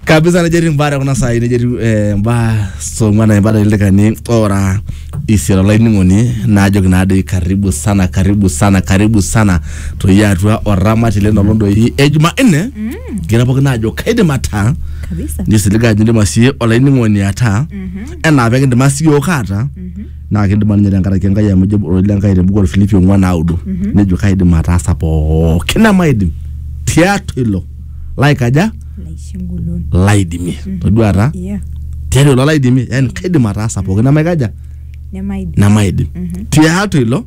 kabisa nejo etii mbaa te kuna saai nejo etiu eh, mbaa song'uan na mbaa lelekani ora isiet olainining'oni naajoki naadoi karibu sana karibu sana karibu sana toi atua oramati lino londoi e jumanne kira pookin naajo kaidim ataa kabisa nisiliga ajo indim asie olainining'oni ataa enaa pekindima siyiok aata naa kidima ninye tenkaraki Enkai amu ejo ororei le Enkai te buku Orfilipi ong'uan naudo nejo kaidim ataasa pooki nemaidim tiatua ilo laikaja laisingolon laidimie todua taa yeah tiatua ilo laidimie yani kaidim ataasa pooki nemaikaja nemaidim nemaidim tiatua ilo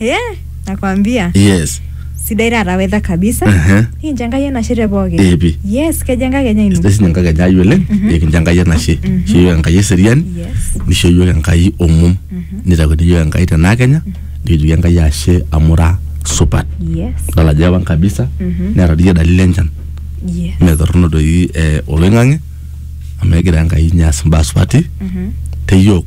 Eh, nakwambia. yes Sidai taata weather kabisa. Ehe. Nikincho Enkai enashe te pooki. Eh, pi. Yes, kejo enkakenya ino. sidai sinye enkai enye ai oleng nikincho enkai enashe isho yiok enkai eseriani Yes. nisho yiok enkai omom nitakuni yiok enkai tenaa kenya nikijoki enkai ashe amu ira supat Yes. idol ajo ewan kabisa Mhm. neeta diyie dalili enchan Yes. mee torrono doi eh, oloing'ang'e amu egira enkai ninye aas imbaa supati Mhm. te yiok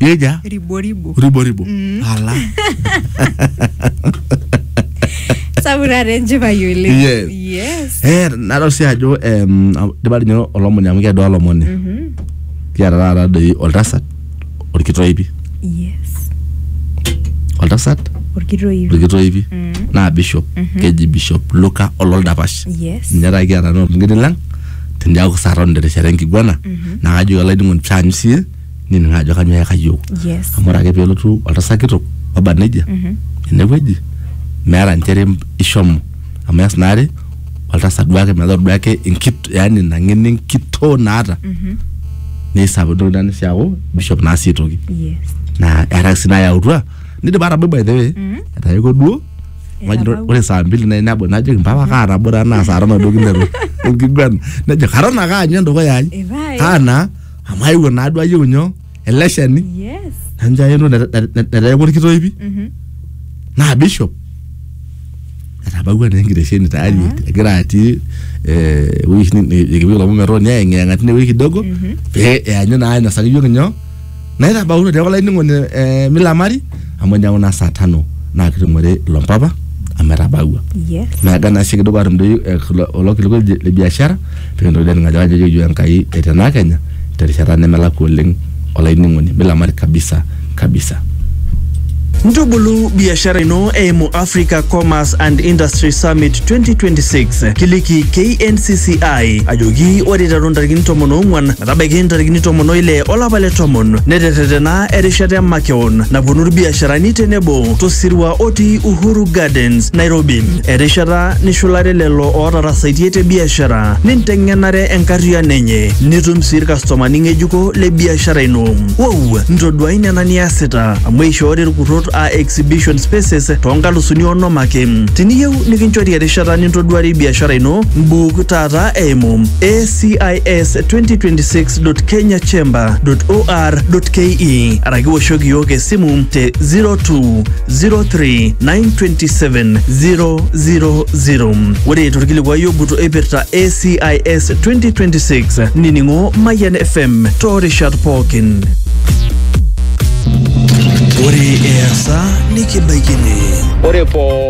Yeja riboribo riboribo. Ala. sapuk taata enchipai oleng Yes. yes Eh, nadol sii ajo em, dipa ninye olomoni amu keedo olomoni. Kiata taata doi oltasat orkitoipi. yes Oltasat orkitoipi orkitoipi naa bishop keji bishop Luka ololdapash. yes Ninye taa kiata naa olming'ini lang teniaku saa tano terishata enkiguana. Naa kajoki olainining'oni pee aanyu siiyie nining ajo kanyoo eyaka yiok yes amu ore ake pelotu oltasat kitok oba nejia enewueji meeta nchere ishomo amu eas naare oltasat duake metaa ore duake enkit yani ina ng'eno enkitoo naata neisapuk nitoki ina sii aaku bishop naa sii aitoki yes naa eeta sii nayautua nidipa atabai by the way etayiewua duo Majo Etabaua. ore saa mbili nayieu nabol najoki mpapa kaa nabo taa naa saa tano duo kinteru enkiguana nejo katon ake aanyu endukuya ai Epae. kaa naa amu aewuo naa duo ayieu nyoo ele shani Yes. nanja aeno neteeku orkitoipi Mhm. naa bishop etabawua naa enkitesheni tayari Ah. egira atii eh, ewueji oshi ni- nikipik ilomon metooni ayeng'iyeng'a tine wueji kidogo Mhm. pee eanyu naa ainosaki iyiok nyoo naitabaunu neeku olainining'oni eh, milamari amu ejo kuna saa tano naa kitumore ilo mpapa amu etabawua Yes. naaga naa sii kidupa atum doi eh, kulo- kulo kilikuai le- le biashara pikintoki doi aning ajo kajo keyieu enkai etenaa kenya terishata nemelakua oleng olainining'oni milamari kabisa kabisa Ntubulu biashara ino eimu Africa Commerce and Industry Summit 2026. Kiliki KNCCI ajoki ore iteru ntarikini tomon oong'wan metabaiki ntarikini tomon oile olapa le tomon neterretena erishata emakeon naponu irbiasharani tenebo tosirua otii Uhuru Gardens, Nairobi. Erishata nishulare lelo ootarasaitie te biashara ninteng'enare enkarriyiano enye nitum sii irkastomani ng'ejuko le biashara ino. Wou, ntoduai nena niasita amu eishoori irkurrot aa exhibition spaces too nkalusuni onom ake. Tiniyieu nikinchori erishata nintoduarie biashara ino, mbuuk taata eimu ACIS 2026 www.kenyachamber.or.ke araki woshoki iyiook esimu te 0203927000. Ore torkilikuai ogut oipirta ACIS 2026 nining'o Mayian FM toorishat pookin. Ore easa nikibaikini. Ore poo